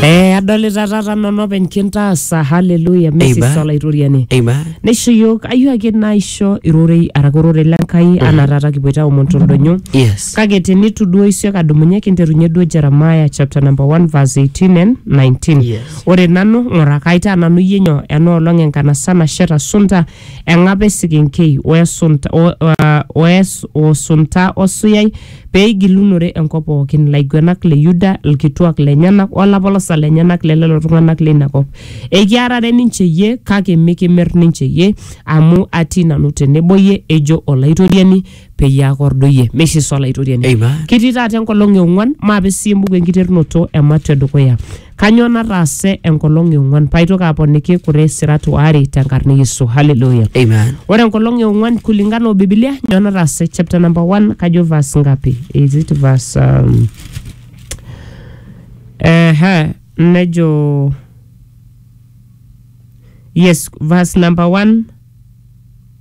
Eh, adolita taata nanu openy kintaasa haleluya mesis Amen. olaitoriani Amen. neisho yiok ayieu ake naisho irorei araki ororei lenkai anaa taata kipoito aomon toldonyo Yes. kake tenitu duo isiok adumunye kinterunye duo jeremiah chapter number 1 verse 18 and 19 Yes. ore nanu ng'ura kaitaa nanu iyie nyoo enoolong enkanasa nasheta sunta Eng'ap esekenkei o esunta, o, uh, o es, o sunta o suyai, pee eigilunore enkop pooki, ilaiguenak le Yuda, ilkituak lenyenak, o lapolosak lenyenak le lelo tung'anak leina kop. Ekiarare ninche iyie, kake mikimir ninche iyie, amu atii nanu tenebo iyie, ejo Olaitoriani, peyie aakordu iyie. Meishe sa Olaitoriani? Amen. Kitii taata enkolong e ong'uan, maape sii embuku enkiterunoto e Matua e dukuya. Kanyoo nataase enkolong e ong'uan paaitoki aponiki kure sirat waare tenkarna e Yesu. Haleluya. Amen. Ore enkolong e ong'uan kulingana o Biblia nyoo nataase chapter number 1 kajo verse ngapi? Is it verse um, ehe nejo yes verse number 1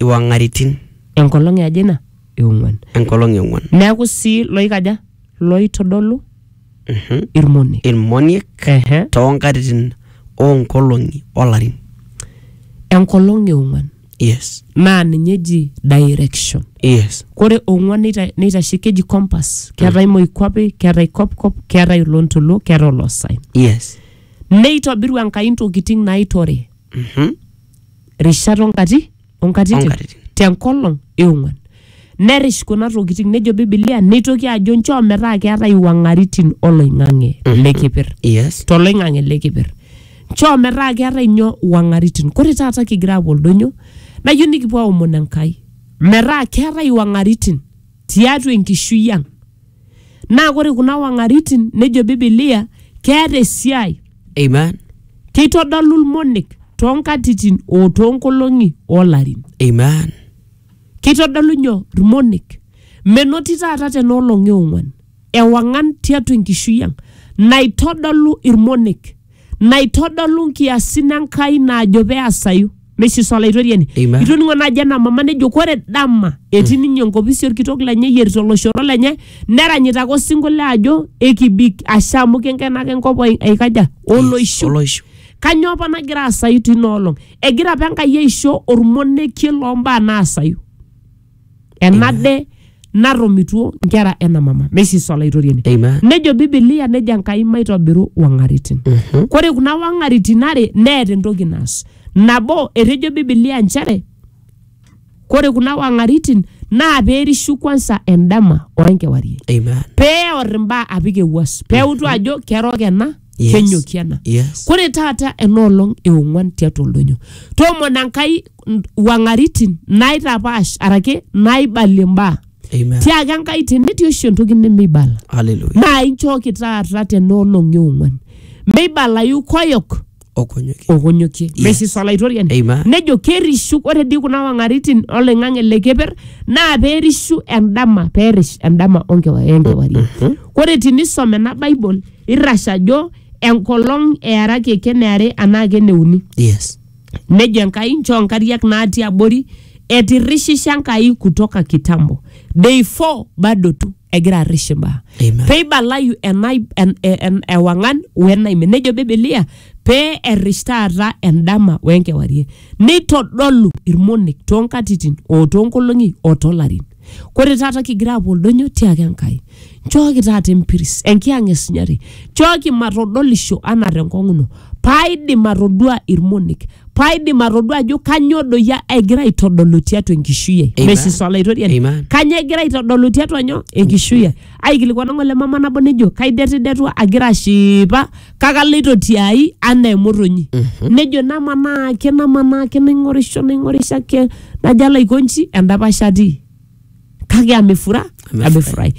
iwang'aritin. Enkolong e aja ina? E ong'uan. Enkolong e ong'uan. Neaku sii looikaja? Looitodolu Mhm. ilmoniek. Ilmoniek Ehe. too nkatitin oo nkolong'i o larin. Enkolong e ong'uan Yes. naa ninye eji direction. Yes. Kore ong'uan neita- neitashe keji compass. Keetae moikuape, keetae kopkop, keetae olontoluo, keetae oloosaen. Yes. Neitobiru Enkai ntokitin naaitore. Mhm. rishat onkati onkatitin Onkatitin. tenkolong eong'uan nerish kuna tokitin nejo bibilia neitoki ajo nchoo metaa keetae iwang'aritin oloing'ang'e lekipir yes toloing'ang'e lekipir nchoo metaa keetae nyoo iwang'aritin kore taata kigira apuo oldonyo nayieu nikipuo aomon enkai metaa keetae iwang'aritin tiatua enkishui ang. Naa ore kuna wang'aritin nejo Bibilia keeta esiai. Amen. Keitodolu ilmonek too nkatitin o too nkolong'i o larin. Amen. Keitodolu nyoo? Ilmonek. Menoti taata tena olong e ong'uan ewang'an tiatua enkishui ang naitodolu ilmonek. naitodolu nkiasin Enkai naajo peasayu. Meishiso Olaitoriani. Amen. Itoning'o naaji ena mama nejo kore dama etii ninye enkopisi olkitok lenye eyierita oloshoro lenye neranyita ake osinkolio ajo ekibik ashe amu kenkenaka enkop ai- aikaja oloishu. Oloishu. Kanyoo apa nagira asayu tina olong? Egira apa Enkai aisho olmonekie loo mbaa naasayu. enade narromituo nkera ena mama meisisa olaitoriani Amen. nejo bibilia nejo enkai maitobiru wang'aritin Mhm. kore kuna wang'aritin are neeta entoki naas nabo etejo bibilia nchere kore kuna wang'aritin naa peerishu kwansa endama oenkewarie Amen. peor imbaa apik ewuas peutu ajo kerook ena Yes. kenyoki ena Yes. kore taata enoolong eong'uan tiatua oldonyo toomona nkai n- wang'aritin naitapaash arake naibalie mbaa Amen. tiaaki enkai tenetii oshi entoki nemeibala Hallelujah. naa inchooki taata tenoolong eong'uan meibalayu koyok Okonyoki. okonyokie Yes. mesis olaitoriani Amen. nejo kerishu ore dii kuna wang'aritin oloing'ang'e le keper naa perishu endama perish endama onkewa- enkewarie ore tinisom ena bible irrash ajo enkolong earaki eken eare anaa eken euni Yes. nejo enkai nchoo nkariak natii abori etirrishisha enkai kutoka kitambo day 4 bado tu egira arrish imbaa Amen. peibalayu enai- en- en- en- ewang'an wenaimin nejo bibilia pee errish taata endama wenkewarie neitodolu irmonek toonkatitin oo toonkolong'i oo toolarin Kore taata kigira apuo oldonyo tiaki Enkai, nchooki taata empiris, enkiyang' esinyati, nchooki matodolisho anaa tenkong'u ino, paaidim atodua ilmonek, paaidim atodua ajo kanyoo doi egira aitodolu tiatua enkishui ai. Amen. Mesis Olaitoriani. Amen. Kanyoo egira aitodolu tiatua nyoo? Enkishui ai. Aikilikuana ng'ole mama nabo nejo, kaidetidetua agira ashipa kake aloito tiai anaa emotonyi nejo namanaa ake namanaa ake naing'orisho naing'orisho ake najo alo aiko nji endapash atii kake amefura amefurahi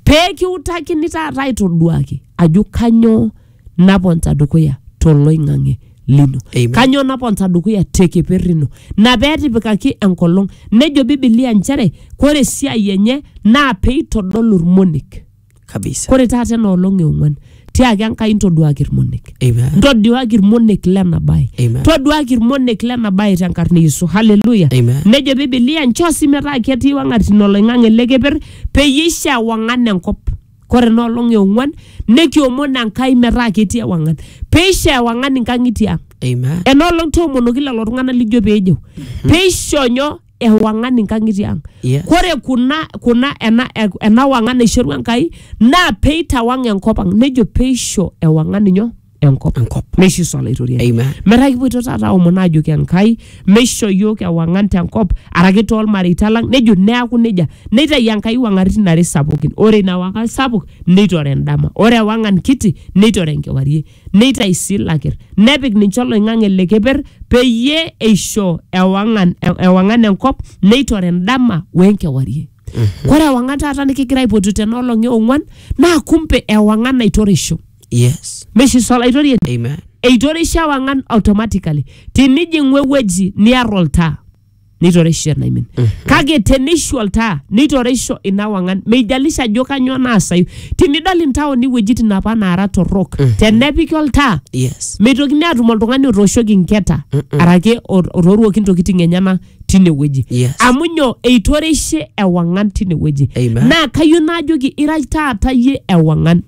pee kiutakini taata aitoduaki ajo kanyoo naponta dukuya toloing'ang'e lino Amen. kanyoo naponta dukuya te keper ino na pee etipikaki enkolong nejo bibilia nchere kore esiai enye naa peitodolu irmonek kabisa ore taata ena olong e ong'uan tiaki enkai intoduaki irmonek Amen. ntoduaki irmonek lena bae Amen. toduaki irmonek lena bae tenkarna e yesu haleluya Amen. nejo bibilia nchoo sii metaa ketii wang'atin oloing'ang'e le keper peyie eisho ewang'an enkop kore ena olong e ong'uan nekiomon enkai metaa ketii ewang'an peisho ewang'an inkang'itie ang Amen. ena olong toomonoki lelo tung'anak lijo peejeu peisho nyoo ewang'an inkang'itie ang Yes. kore kuna kuna ena, ena wang'an naishorua enkai naa peitawang enkop ang nejo peisho ewang'an inyo enkop Enkop. neisho iso olaitoriani Amen. metaa kipuoito taata aomon aajoki enkai meisho yiok ewang'an tenkop araki toolmareita lang nejo neaku nejia neitayu enkai wang'aritin are sapukin ore ina wang'an sapuk neitore endama ore ewang'an kiti neitore enkewarie neitayu sii ilakir, nepik ninche oloing'ang'e le keper peyie eisho ewang'an, ewang'an enkop neitore endama wenkewarie. Kore ewang'an taata nikigira aipotu tena olong e ong'uan naa kumpe ewang'an naitoreisho. Yes. Meshi sa olaitoriani? Amen. Eitoreisho ewang'an automatically. Tinijing'u ewueji niar oltaa. neitoreisho enaimin kake teneishu oltaa neitoreisho ina wang'an meijalisha ajo kanyoo naasayu tinidol intaoni iwuejitin apa naara torrok tenepiki oltaa yes meitokini atum oltung'ani otooshoki nketa arake ot- otooruoki ntokitin enyena tine wueji Yes. amu nyoo eitoreishe ewang'an tine wueji Amen. naa kayieu naajoki ira taata yie ewang'an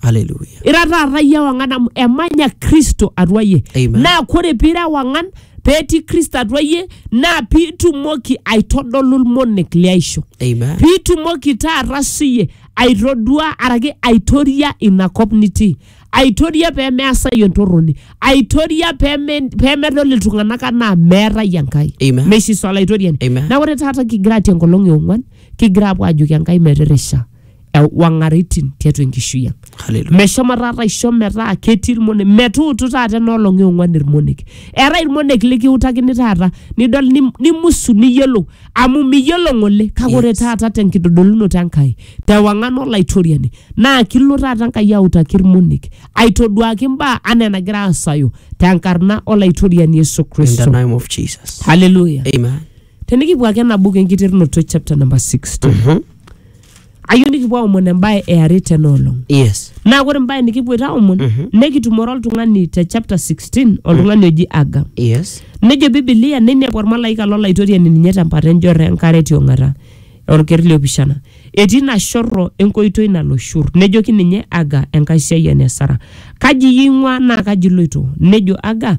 Hallelujah. ira taata iyie ewang'an amu emanya kristo atua iyie Amen. naa kore piira ewang'an petii kristo atua iyie naa piitumoki aitodolu ilmonek liaisho Amen. piitumoki taata siyie aitodua araki aitoria ina kop nitii aitoria pemeasayu entorroni aitoria peme- pemedol iltung'anak anaa meetai enkai Amen. meishiso olaitoriani Amen. na ore taata kigira atii enkolong e ong'uan kigira apuo ajoki enkai metirrisha ewang'aritin tiatua enkishui ang Hallelujah. meshomo taata aisho metaa ketii irmonek metuutu taata enoolong eong'uan irmonek eetae irmonek likiutakini taata nidol nim- nimusu niyiolou amu miyiolo ng'ole kake ore Yes. taata tenkitodolunoto enkai tewang'an olaitoriani naa kilo taata enkai autaki irmonek aitoduaki imbaa anaa enagira aasayu tenkarna olaitoriani yesu In the kristo name of Jesus. haleluya Amen. tenikipuo ake ena buku enkiterunoto chapter number 60 Mhm. ayieu nikipuo aomon embae eare tena olong yes naa ore embae nikipuoito aomon Mhm. nekitumore oltung'ani te chapter 16 oltung'ani oji aga yes nejo bibilia neinepu ormalaika lolaitoriani ninye tempata enjorro enkare tiong'ata orker liopishana etii ina shorro enkoitoi nalo shur nejoki ninye aga enkaisiayiani e sara kaji iyie ing'ua naa kaji iloito nejo aga